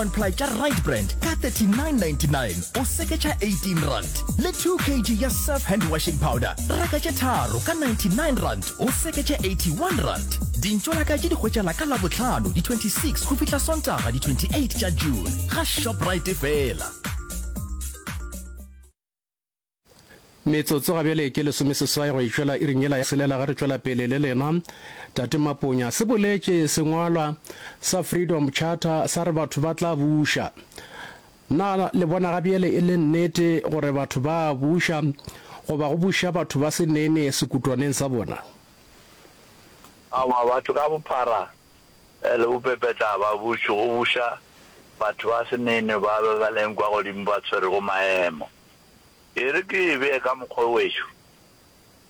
One ply tša right brand ka 39.99 o seketša 18 rand le 2 kg ya surf hand washing powder reka tše tharo ka 99 rand o seketša 81 rand dintšo la ka tše di hwetšala ka labohlano di-26 go fihla sontaga di-28 tša june ga shoprite fela Metsotso ga bjale ke lesomeseswai go e tšwela iring yela ya selela ge re tšwela pele le lena. Tate Maponya, se boletše sengwalwa sa Freedom Charter sa re batho ba tla buša. Na le bona ga bjale e le nnete gore batho ba a buša goba go buša batho ba se nene sekutwaneng sa bona? Aowa, batho ka bophara Bjale o pepetla babuši go buša batho ba senenwe ba be ba leng kwa godimo ba tswerego maemo. E re ke e bee ka mokgwa o wešo,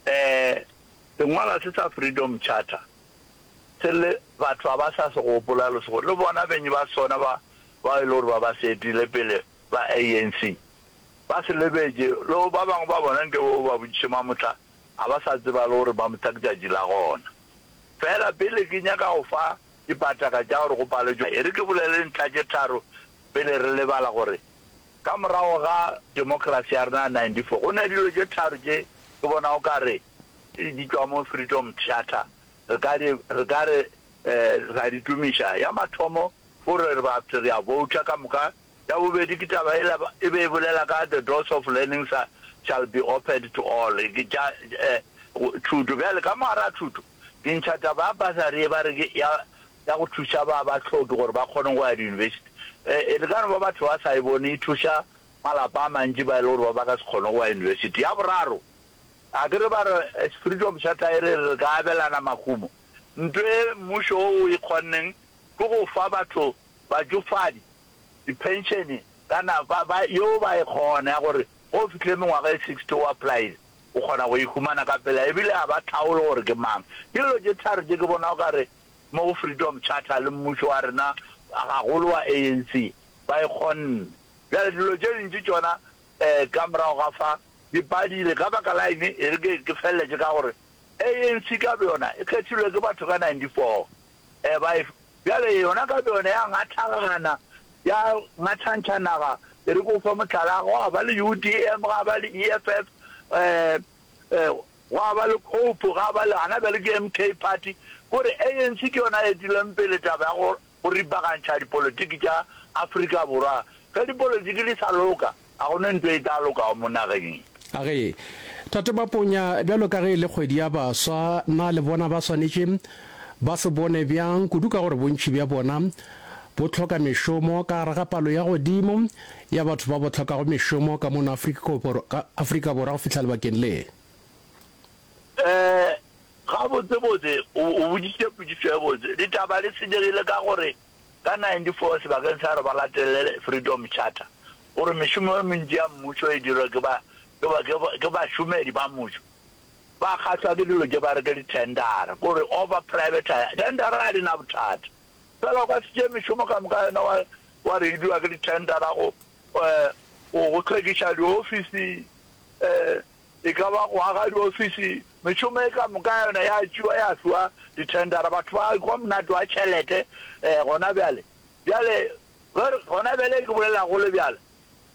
ee, sengwalwa se sa Freedom Charter se le batho ga ba sa se gopola lesego, le bona beng ba sona ba bao e le gore ba ba se etile pele ba ANC ba se lebetše, le ba bangwe ba bona nke ba ba botšiše mamohla A ba sa tseba le gore ba mo tla ke tšatši la gona. Feela pele ke nyaka go fa dipataka tša gore go palwe tšona, e re ke bolele ntlha tše tharo pele re lebala gore ka morago ga democracy ya rena ya 94 go na dilo tše tharo tše ke bona o ka re di tšwa mo Freedom Theatre re ka di re ka re ra di tumiša. Ya mathomo gore re ba re a vouta ka moka. Ya bobedi ke taba ela e be e bolela ka the doors of learning sa shall be opened to all, ke tša thuto. Bjale ka mogara thuto ke ntšha taba ya bursary e ba re ke ya ya go thuša ba ba hloki gore ba kgone go ya di-university. E le ka no ba batho ba sa e bone e thuša malapa a mantši ba e le gore ba ba ka se kgone go ya university. Ya boraro a ke re ba re spirit of charter e re re ka abelana mahumo. Nto e mmušo o o e kgonneng ke go fa batho batšofadi diphenšene ka nako ba ba yeo ba e kgona ya gore ge o fihlile mengwaga e sixty o apply-ile o kgona go e humana ka pela ebile ga ba tlhaolo gore ke mang. Ke dilo tše tharo tše ke bona o ka re mo go Freedom Charter le mmušo wa rena gagolo wa ANC ba e kgonne. Bjale dilo tše dintši tšona um ka morago ga fa di padile. Ka baka la eng e re ke ke feleletše ka gore ANC ka boyona e kgethilwe ke batho ka ninety four. E ba efe? Bjale yona ka boyona ya ngathagana, ya ngathantšha naga. Ke re ke go fe mohlala, gwa ba le UDM, ga ba le EFF, gwa ba le Cope, ga ba le, gona bjale ke MK Party. Ko re ANC ke yona e duleng pele taba ya go ripagantšha dipolotiki tša Afrika Borwa. Ge dipolotiki di sa loka. A go ne nto e tla lokago mo nageng ye? A re, Tate ba ponya, bjalo ka ge e le kgwedi ya baswa, na le bona ba swanetše ba se bone bjang, kudu ka gore bontši bja bona bo hloka mešomo ka gare ga palo ya godimo ya batho ba bo hlokago mešomo ka mono Afrika Borwa go fihla lebakeng le? Ee, gabotsebotse o boditše potšišo e botse. Ditaba di senyegile ka gore Ka 94 sebakeng sa gore ba latele Freedom Charter, o re mešomo e mentši ya mmušo e dirwa ke ba, ke ba, ke ba, ke bašomedi ba mmušo. Ba kgahlwa ke dilo tše ba re ke dithendara, ke gore over privatize, thendara ga di na bothata. Fela o ka se tšee mešomo ka moka yona wa, wa re e dirwa ke dithendara go, eh, go, go hlwekiša diofisi, eh, E ka ba go aga diofisi, mešomo e ka moka ya yona ya tšewa ya fiwa dithendara, batho ba hwa monate wa tšhelete um gona bjale. Bjale ge re, gona bjale ke bolela go le bjalo,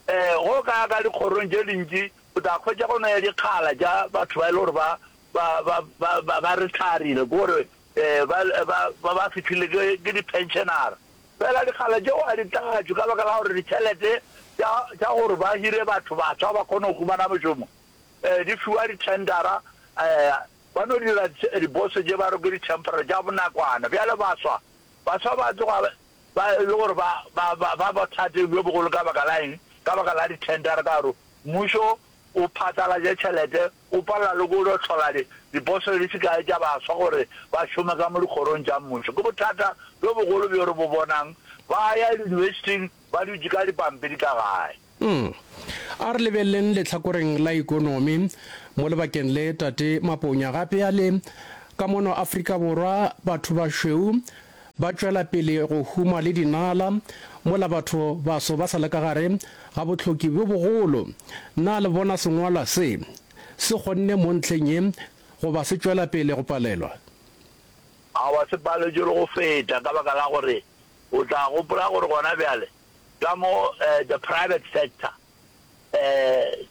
um ge o ka ya ka dikgorong tše dintši o tla hwetša go na le dikgala tša batho ba e le gore ba, ba, ba, ba, ba, ba retharile, ke gore um ba, ba, ba, ba fihlile ke, ke diphenšenara. Fela dikgala tšeo a di tlatšwe ka baka la gore ditšhelete tša, tša gore ba hire batho batshwa ba kgone go humana mošomo, eh, di fiwa dithendara, eh, ba no dira dibose tše ba re ke ditempera tša bonakwana. Bjale baswa, baswa ba tloga ba e le gore ba, ba, ba, ba bothateng bjo bogolo ka baka la eng? Ka baka la dithendara, ka gore mmušo o phatlalatša tšhelete O palela le go yo hlola diposele di se kae tša baswa gore ba šome ka mo dikgorong tša mmušo. Ke bothata bjo bogolo bjo re bo bonang. Ba a ya yunibesithing ba dutše ka dipampiri ka gae. Umm. A re lebeleleng lehlakoreng la ikonomi mo lebakeng le, Tate Maponya gape a le, Ka mono Afrika Borwa, bathobašweu, Ba tšwela pele go huma le dinala, mola batho baso ba sa le ka gare ga bohloki bjo bogolo. Na le bona sengwalwa se se kgonne mo ntlheng ye goba se tšwela pele go palelwa? Aowa, se paletšwe le go feta, ka baka la gore o tla gopola gore gona bjale ka mo the private sector,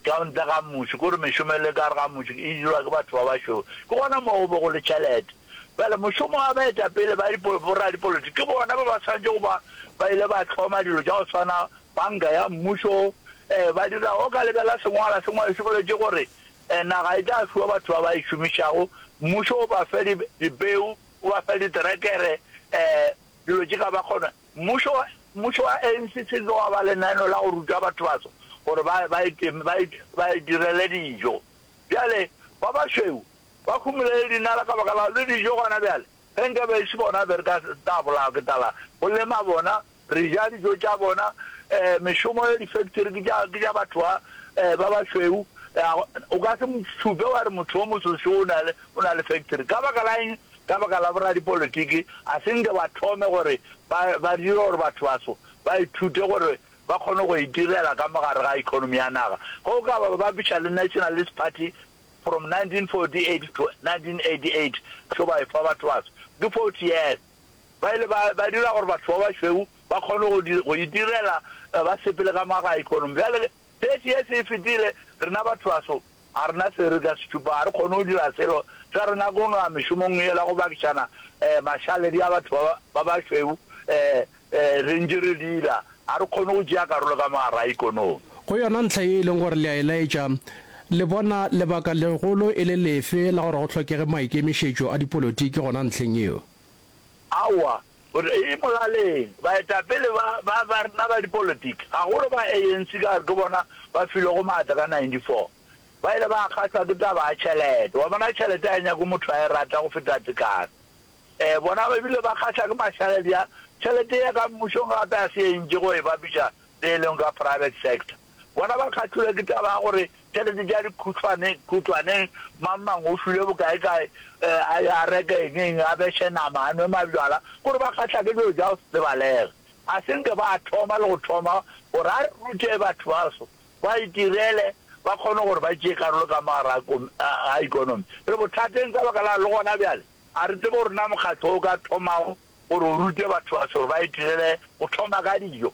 ka ntle ga mmuši, ke gore mešomo e le ka gare ga mmuši e dirwa ke batho ba bašweu, ke gona moo go be go le tšhelete. Bjale mošomo wa baetapele ba boradipolotiki ke bona ba ba swanetše go ba ba ile ba hloma dilo tša go swana panka ya mmušo, ba dira o ka lebela sengwala se ngwadišwe boletše gore naga e tla fiwa batho ba ba e šomišago, mmušo o ba fe dipeu, o ba fe diterekere, dilo tše ka ba kgona. Mmušo wa Mmušo wa ANC se ke wa ba lenaeno la go ruta batho baso gore ba ba iteme ba it ba itirele dijo. Bjale ba bašweu ba humile le dinala ka baka la le dijo gona bjale. Ge nka be e se bona be re ka se tla bolawa ke tlala. Go lema bona, re ja dijo tša bona, eh, mešomo ya difektori ke tša ke tša batho ba eh, ba bašweu. Eh, o ka se mo šupe wa re motho o moso seo o na le o na le fektori. Ka baka la eng ka baka la boradipolitiki, a se nke ba thome gore ba, ba dire gore bathobaso ba ithute gore ba kgone go itirela ka mo gare ga economy ya naga. Ge o ka ba bapiša le Nationalist Party from 1948 to 1988, tlo ba efa bathobaso ke 40 years, ba ile ba, ba dira gore batho ba bašweu ba kgone go, go itirela ba sepele ka mo gare ga economy. Bjale, Phethi ye se e fetile, rena bathobaso ga rena se re ka se tšupa, ga re kgone go dira selo, sa rena ke go no ya mešomong yela go bakišana mašaledi a batho ba bašweu re ntše re dira, ga re kgone go tšea karolo ka mo gare ga ikonomi. Go yona ntlha ye e leng gore le a e laetša, le bona lebaka legolo e le lefe la gore go hlokege maikemišetšo a dipolotiki gona ntlheng yeo? Aowa, O re, E molaleng, baetapele ba, ba, ba rena ba dipolitiki, gagolo ba ANC, ka gore ke bona ba filwego maatla ka 94, ba ile ba kgahlwa ke taba ya tšhelete. Wa bona, tšhelete ga e nyakwe motho a e rata go feta tekano. Ee, bona ba bile ba kgahlwa ke mahlale bjang? Tšhelete ye ka mmušong gape ga se ye ntši go e bapiša le ye lengwe ka private sector. Bona ba kgahlilwe ke taba ya gore tšhelete tša dikhutšwane khutšwaneng, mang mang o filwe bokaekae, a ye a reke eng eng, a beše nama, a nwe mabjala, ke gore ba kgahla ke dilo tša go se tsebalege. A se nke ba thoma le go thoma gore a re rute batho baso ba itirele, ba kgone gore ba tšee karolo ka mogare ga ikonomi. Re bothateng ka baka la le gona bjale a re tsebe gore na mokgatlo o ka thomago gore o rute batho baso gore ba itirele go thoma ka dijo.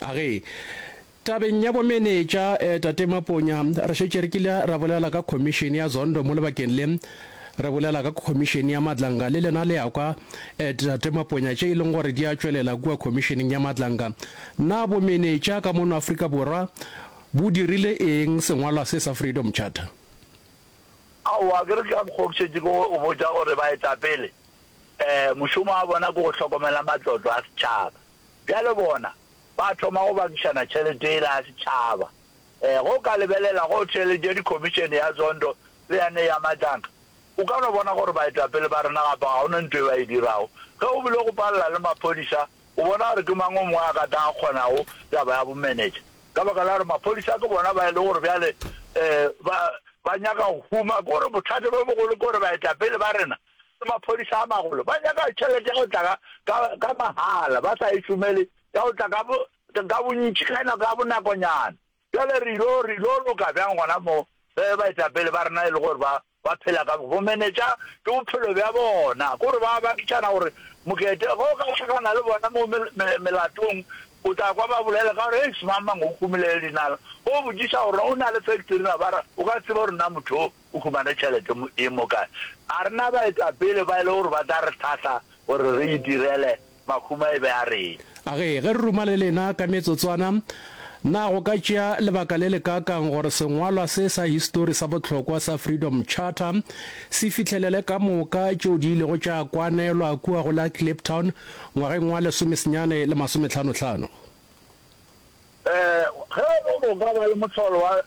A re, Tabeng ya bomenetša, Tate Maponya, re šetše re kile ra bolela ka khomišene ya Zondo mo lebakeng le. Re bolela ka khomišene ya Madlanga, le lena le a kwa, Tate Maponya, tše e leng gore di a tšwelela kua khomišeneng ya Madlanga. Na bomenetša ka mono Afrika Borwa bo dirile eng sengwalwa se sa Freedom Charter? Aowa, ke re ke ka mokgwa o ke šetše ke go botša gore baetapele mošomo wa bona ke go hlokomela matlotlo a setšhaba. Bjale bona, ba thoma go bakišana tšhelete yela ya setšhaba. Ee, ge o ka lebelela go theeletšo ya dikhomišene ya Zondo le ya ne ya matlanka, o ka no bona gore baetapele ba rena gape ga go na nto e ba e dirago. Ge o bile go palela le maphodisa, o bona gore ke mang o mongwe a ka tla a kgonago taba ya bomenetša, ka baka la gore maphodisa ke bona ba e le gore bjale, ee, ba, ba nyaka go huma. Ke gore bothata bjo bogolo ke gore baetapele ba rena le maphodisa a magolo ba nyaka tšhelete ya go tla ka mahala, ba sa e šomele, ya go tla ka bontši ka nako ya bonakonyana. Bjale re ilo loka bjang gona mo ge baetapele ba rena e le gore ba phela ka bomenetša ke bophelo bja bona? Ke gore ba baketšana gore mokete ge o ka hlakana le bona mo melatong o tla kwa ba bolela ka gore, Eish, mang-mang o humile le dinala. Ge o botšiša gore o na le factory na ba ra, o ka tseba gore na motho O humane tšhelete mo e mo kae? A re na baetapele ba e le gore ba tla re hlahla gore re itirele, mahuma e be a reng? A re ge re ruma le lena ka metsotswana, na go ka tšea lebaka le lekaakang gore sengwalwa se sa histori sa bohlokwa sa Freedom Charter se fihlelele ka moka tšeo di ilego tša kwanelwa kua go la Kliptown ngwageng wa lesomesenyane le masometlhanotlhano? Ee, ge e le gore o ka ba le mohlolo wa